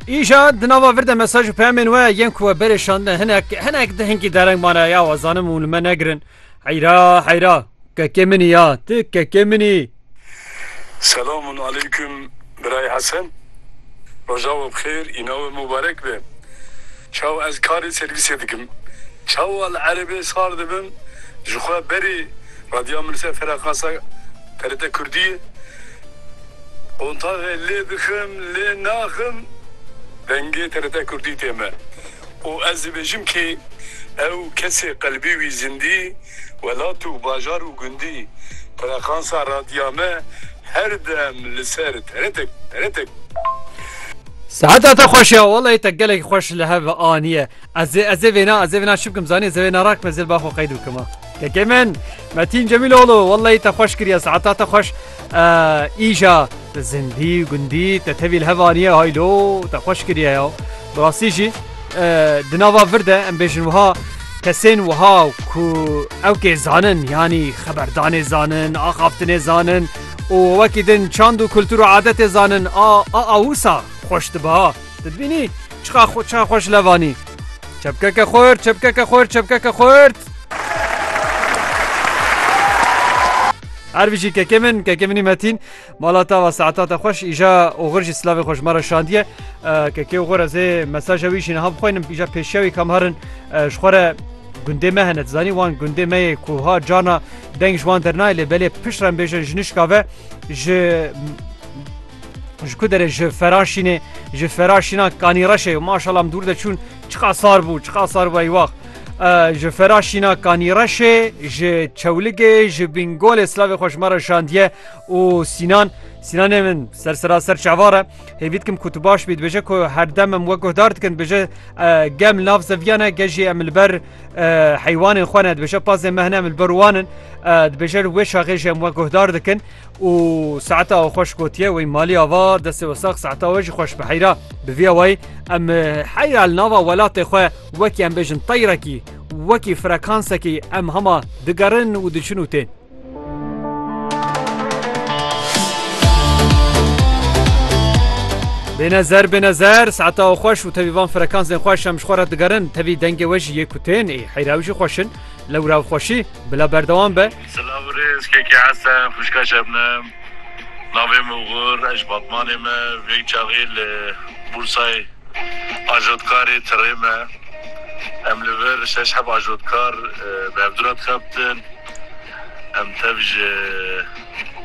Îşa di nava vir de mesaj û peyamên we yên ku we berê şandine hinek hinek di hinkî dereng mane ya we zanim û li me negirin heyra heyra kekê minî ya ti kekê minî Selamun aleyküm Biray Hesen Roja we bi xêr îna we mubarek be Çawa ez karê servîsê dikim Çawa li erebê sar dibim ji xwe berê Radya Milse Frekansa TRT Kurdiyê Qontagê lê bikim lê naxim dengê TRT Kurdî tê me û ez dibêjim kî ew kesê qelbî wî zindî welat û bajar û gundî frekansa radya me her dem li ser TRT TRT. Seheta te xweş ya walayi te gelek xweş li hev aniye. Ezê ezê vêna ezê vêna çi bikim zanî ez ê vêna rakim ez ê li ba xwe qeyd bikim a. Kekê min Metîn Cemîloglu wellahî te xweş kiriye saeta te xweş îja zindî gundî te tevî li hev aniye haylo te xweş kiriye ya bi rastî jî di nava vir de em bêjin wiha kesên wiha ku ew kê zanin yanî xeberdanê zanin axaftinê zanin û wekî din çand û kultur û adetê zanin a a wisa xweş diba. Tu dibînî çiqa ça xwe ji levanî. Çepkeke xurt, çepkeke xurt, çepkeke xurt. Ervijî kekê min kekê minî metîn mala ta va saeta te xweş îja oxir jî silavê xweş me re şandiye kekê oxir ez ê mesaja wî jî niha bixwînim îja pêşiya wî kam herin ji xwe re gundê me hene zanî wan gundê me yê ku ha cana deng ji wan dernayê lê belê pişt re bêjin ji nişka ve ji Ji ku derê ji Feraşînê, ji Feraşîna Kanîreşê û maşala em dûr de çûn çiqa sar bû, çiqa sar bû eywax. Ji Feraşîna Kanîreşê, ji Çewligê, ji Bîngolê silavê xwe ji me re şandiye û Sînan Sînanê min ser seraser çavare hêvî dikim ku tu baş bî dibêje ku herdem em we guhdar dikin dibêje gem nav zeviyane ge jî em li ber heywanên xwe ne dibêje pazê mehne em li ber wan in dibêje wê şaxê jî em we guhdar dikin û saeta we xweş gotiye wey malî ava destê we sax saeta we jî xweş bi heyra bi vîya wayî em heyra li nava welatê xwe wekî em bêjin teyrekî wekî frekansekî em hema digerin û diçin û tên. Bênezer bênezer saeta we xweş û tevî van frekansên xweş em ji xwe re digerin tevî dengê we jî yê ku tên ê heyra ew jî xweşin lewra ew xweşî bila berdewam be Silav û rêz kekê Hesen, xwişka Şebnem. Navê min Ugur e, ji Batmanê me. Vê çaxê li Bûrsayê ajotkarê tirê me. Em li vir şeş heb ajotkar bi hevdura dixebtin. Em tev ji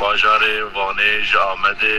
bajarê Vanê, ji Amedê.